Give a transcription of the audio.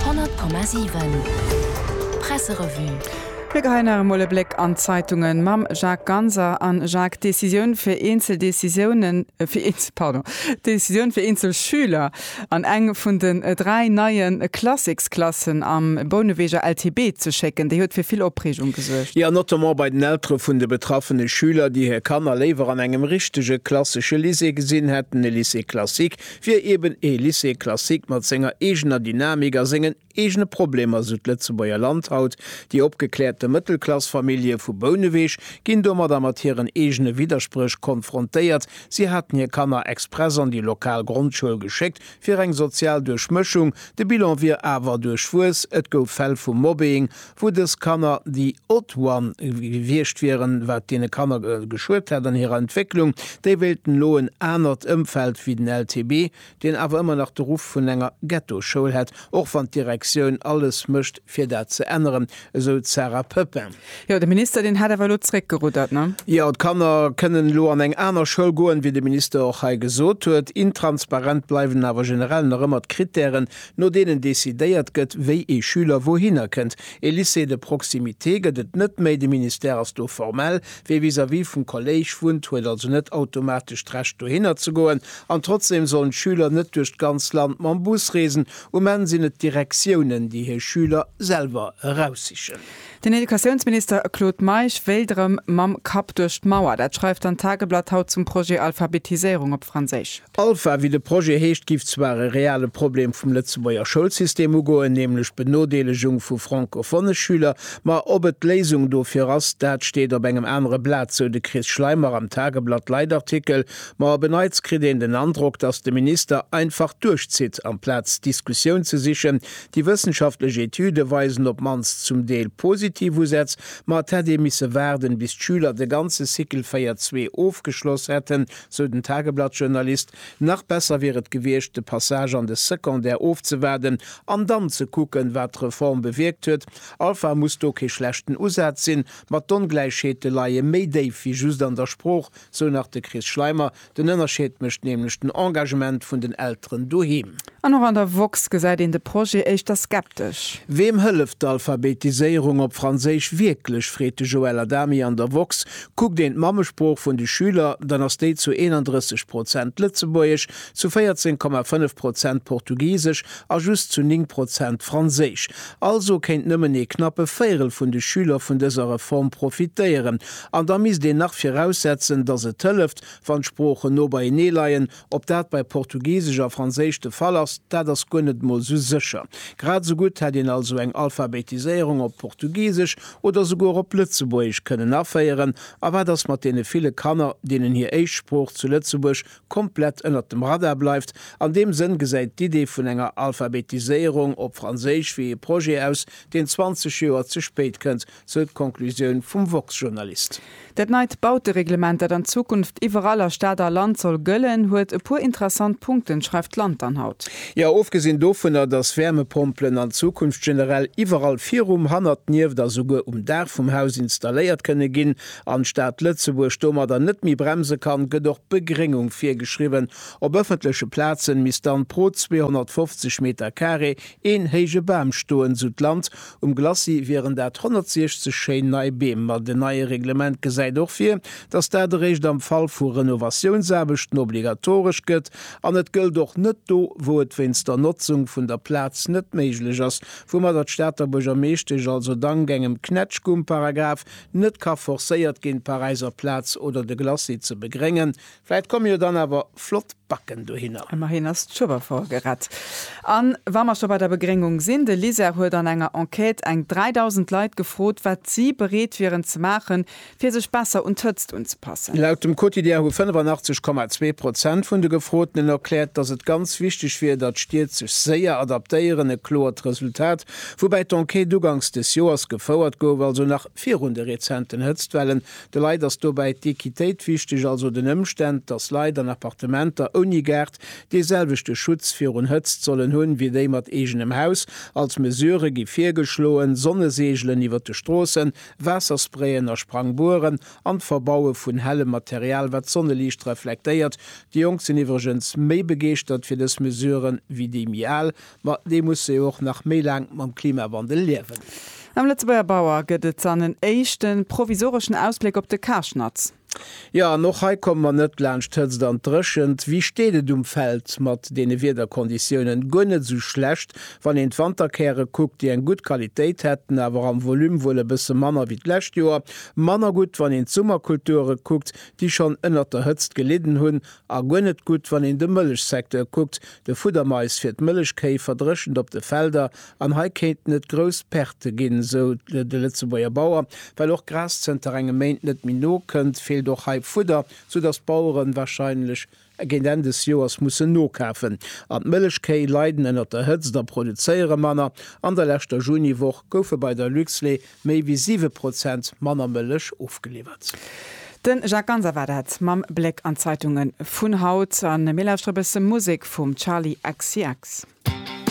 100,7 Presserevue. Mir geheien nach emol e Bléck an d'Zeitunge mam Jacques Ganser. A Jacques, Décisioun fir eenzel Décisiounen, fir eenzel, pardon, Décisioun fir eenzel Schüler an eng vun den dräi neie Classics-Klassen am Bouneweger LTB ze schécken, déi huet fir vill Opreegung gesuergt. Jo, notamment bei den Eltere vun de betraffene Schüler, déi hir Kanner léiwer an engem richtege klassesche Lycée gesinn hätten, e Lycée classique, wier eben ee Lycée classique mat senger eegener Dynamik a sengen eegene Problemer, esou d'Lëtzebuerger Land haut. Déi opgekläerte Mëttelklassfamillje vu Bouneweg ginn domadder mat hiren eegene Widderspréch konfrontéiert, si haten hir Kanner express an déi lokal Grondschoul geschéckt fir eng sozial Duerchmëschung, de Bilan wier awer duerchwuess, et gouf Fäll vu Mobbing wou dës Kanner déi odd one gewiescht wieren, wat deene Kanner geschuet hätt an hirer Entwécklung. Déi wéilten elo en anert Ëmfeld wéi den LTB, deen awer ëmmer nach de Ruff vun enger Ghettoschoul hätt, och wann d'Direktioun alles mécht fir dat ze änneren, esou d'Sarah Poepping. Jo, de Minister, deen hätt awer elo zréckgeruddert, ne? Jo, d'Kanner kënnen elo an eng aner Schoul goen, wéi de Minister och hei gesot huet. Intransparent bleiwen awer generell nach ëmmer d'Krittären, no deenen decidéiert gëtt, wéi ee Schüler wouhinner kënnt. E Lycée de proximité gëtt et net méi, de Ministère ass do formell, wie vis-à-vis vum Kolléisch wunnt, huet also net automatesch d'Recht dohinner ze goen. An trotzdem sollen d'Schüler net duerch d'ganz Land mam Bus reesen, um Enn sinn et d'Direktiounen, déi hir Schüler selwer eraussichen. Den Educatiounsminister Claude Meisch wéilt erëm mam Kapp duerch d'Mauer, dat schreift dann d'Tageblatt haut zum Projet Alphabetiséierung op Franséisch. Alpha, wéi de Projet heescht, giff zwar e reale Problem vum Lëtzebuerger Schoulsystem ugoen, nämlech d'Benodeelegung vu francophone Schüler, ma ob et d'Léisung dofir ass, dat steet op engem anere Blat, sou de Chris Schleimer am Tageblatt Leitartikel. Ma op e Neits kritt een den Androck, datt de Minister einfach duerchzitt, amplaz Diskussioun ze sichen. Déi wëssenschaftlech Etüde weisen op mannst zum Deel positiv Usätz, ma et hätt ee misse waarden, bis d'Schüler de ganze Cycle 4 zwee ofgeschloss hätten, sou den Tageblatt-Journalist, nach besser wier et gewiescht, de Passage an de Secondaire ofzewaarden an dann ze kucken, wat d'Reform bewierkt huet. Alpha muss do kee schlechten Usaz sinn, ma d'Ongläichheete leie méi déif wéi just an der Sprooch, sou nach de Chris Schleimer. Den Ënnerscheed mécht nämlech den Engagement vun den Elteren doheem. An och an der woxx gesäit een de Projet éischter skeptesch. Weem hëlleft d'Alphabetiséierung op Franséisch wierklech, freet de Joël Adami an der woxx. Kuckt een d'Mammesprooch vun de Schüler, dann ass déi zu 31 Prozent Lëtzebuergesch, zu 14,5 Prozent Portugisesch a just zu 9 Prozent Franséisch. Also kéint nëmmen ee knappe Véirel vun de Schüler vun dëser Reform profitéieren. An da misst een nach viraussetzen, datt et hëlleft, wann d'Sproochen no beienee leien, Ob dat bei Portugisesch a Franséisch de Fall ass, dat ass guer net mol sou sécher. Grad sou gutt hätt een also eng Alphabetiséierung op Portugisesch oder souguer op Lëtzebuergesch kënnen aféieren. A wat ass mat deene ville Kanner, deenen hir éischt Sprooch zu Lëtzebuerg komplett ënnert dem Radar bleift? An deem Sënn gesäit d'Idee vun enger Alphabetiséierung op Franséisch wéi ee Projet aus, deen 20 Joer ze spéit kënnt. sou d'Conclusioun vum woxx-Journalist. Dat neit Bautereglement, dat an Zukunft iwwerall a Stad a Land soll gëllen, huet e puer interessant Punkten, schreift d'Land dann haut. Jo, ofgesinn dovunner, datt Wäermepompelen an Zukunft generell iwwerall virum, hannert, nieft a souguer um Daach vum Haus installéiert kënne ginn, an d'Stad Lëtzebuerg domadder net méi bremse kann, gëtt och d'Begréngung virgeschriwwen, Op ëffentleche Plazen misst dann pro 250 Meter carré een héije Bam stoen, sou d'Land, Um Glacis wieren dat 160 schéin nei Beem, ma den neie Reglement gesäit och vir, dass dat eréischt am Fall vu Renovatiounsaarbechten obligatoresch gëtt an et gëllt och net do, wou et wéinst der Notzung vun der Plaz net méiglech ass, woumadder d'Stater Buergermeeschtesch also dank engem Knätschgumparagraf net ka forcéiert ginn, d'Paräiser Plaz oder de Glacis ze begréngen. Vläit komme jo dann awer flott Backen dohinner. Emmerhin ass d'Schueberfort gerett. An wa mer scho bei der Begréngung sinn, de LISER huet an enger Enquête eng 3.000 Leit gefrot, wat si bereet wieren ze maachen, fir sech besser un d'Hëtzt unzepassen. Laut dem Quotidien hu 85,2 Prozent vun de Gefrotenen erkläert, datt et ganz wichteg wier, datt d'Stied sech séier adaptéieren. E kloert Resultat, woubäi d'Enquête ugangs des Joers gefouert gouf, also nach virun de rezenten Hëtztwellen, De Leit ass dobäi d'Equitéit wichteg, also den Ëmstänn, dass Leit an Appartementer ouni Gaart dee selwechte Schutz virun Hëtzt sollen hunn, wéi déi mat eegenem Haus. Als Mesure gi virgeschloen, Sonneseegelen iwwer de Stroossen, Waassersprayen a Sprangbueren an d'Verbaue vun hellem Material, wat d'Sonneliicht reflektéiert. Déi Jonk sinn iwwregens méi begeeschtert fir dës Mesure wéi déi méi al. Ma déi musse jo och nach méi laang mam Klimawandel liewen. Am Lëtzebuerger Bauer gëtt et dann en éischte provisoreschen Ausbléck op de Karschnatz. Jo, an och hei komme mer net laanscht d'Hëtzt an d'Dréchent. Wéi steet et um Feld mat deene Wiederkonditiounen? Guer net esou schlecht, wann een d'Wanterkäre kuckt, déi eng gutt Qualitéit hätten, awer am Volume wuel e bësse manner wéi d'lescht Joer. Manner gutt, wann een d'Summerkulture kuckt, déi schonn ënnert der Hëtzt gelidden hunn A guer net gutt, wann een de Mëllechsecteur kuckt. De Fuddermais fir d'Mëllechkéi verdréchent op de Felder an hei kéinten et grouss Perte ginn, sou de Lëtzebuerger Bauer. Well och Gras zënter engem Méint net méi nokënnt, feelt och hei Fudder, soudatt d'Baueren warscheinlech géint Enn des Joers mussen nokafen. An d'Mëllechkéi leiden ënnert der Hëtzt a produzéiere manner. An der leschter Juniwoch goufe bei der Luxlait Méi wéi 7 Prozent manner Mëllech ofgeliwwert. De Jacques Ganser war dat mam Bléck an d'Zeitunge vun haut. A mir lauschtere bësse Musek vum Charli XCX.